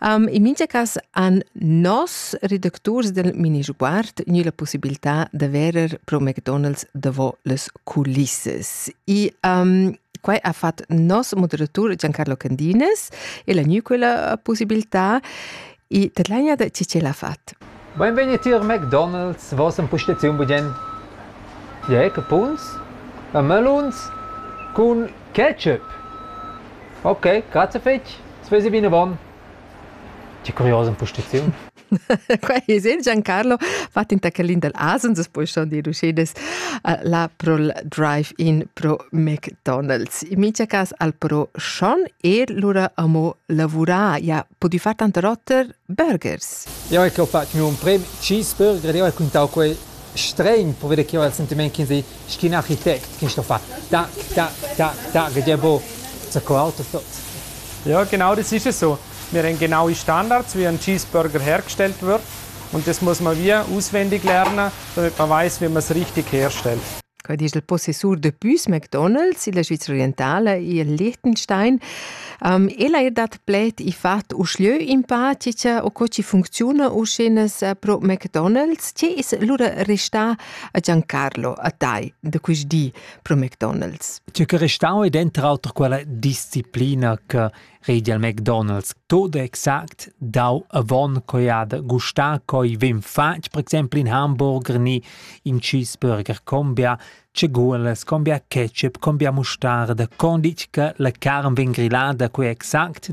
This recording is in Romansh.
Um, in mincha cas han nos redacturs del mini sguard gnü la possibilità da verer pro McDonald's davo las culissas. E um, quai ha fat nos moderatur Giancarlo Candinas e l'ha gnü quella possibilità e tadlagna da chi ch'el ha fat. Benvenuti a McDonald's, vos in pustaziun budien Jack Puns a Melons cun ketchup. Ok, grazie fetch. As vesi vinavon. Che curiosa impostiziun. Qua è sen Giancarlo fatg da Kalin dal Asens, es poi schon dir uscedes la prol drive-in pro McDonald's. In mincha cas al pro schon e lura amo lavurar. Ja, podi far tanta rotter burgers. Io ecco ho fatto il mio primo cheeseburger, io ho raccontato quel strain per vedere che ho il sentiment che si sch'in architect che sto far tac tac tac tac e jebo sco auto tot. Ja, genau, das ist es so. Wir haben genaue Standards, wie ein Cheeseburger hergestellt wird. Und das muss man wie auswendig lernen, damit man weiß, wie man es richtig herstellt. Quai disch il possessur de Püs McDonald's illa Svizra Orientala i Liechtenstein. Um, ella er dat pled i fat uschlö in pa cica o co ci funcziuna uschenas pro McDonald's. Ce es lura restà a Giancarlo a tai da quist di pro McDonald's. Tü che restau ed enter auter quella disciplina che redi al McDonald's tot exact dau avon coi ha da gustar coi vem fatg per exempel in hamburger ni in cheeseburger combia ceguolas, combia ketchup, combia mostarda, condic che la carn vegn grillada coi exact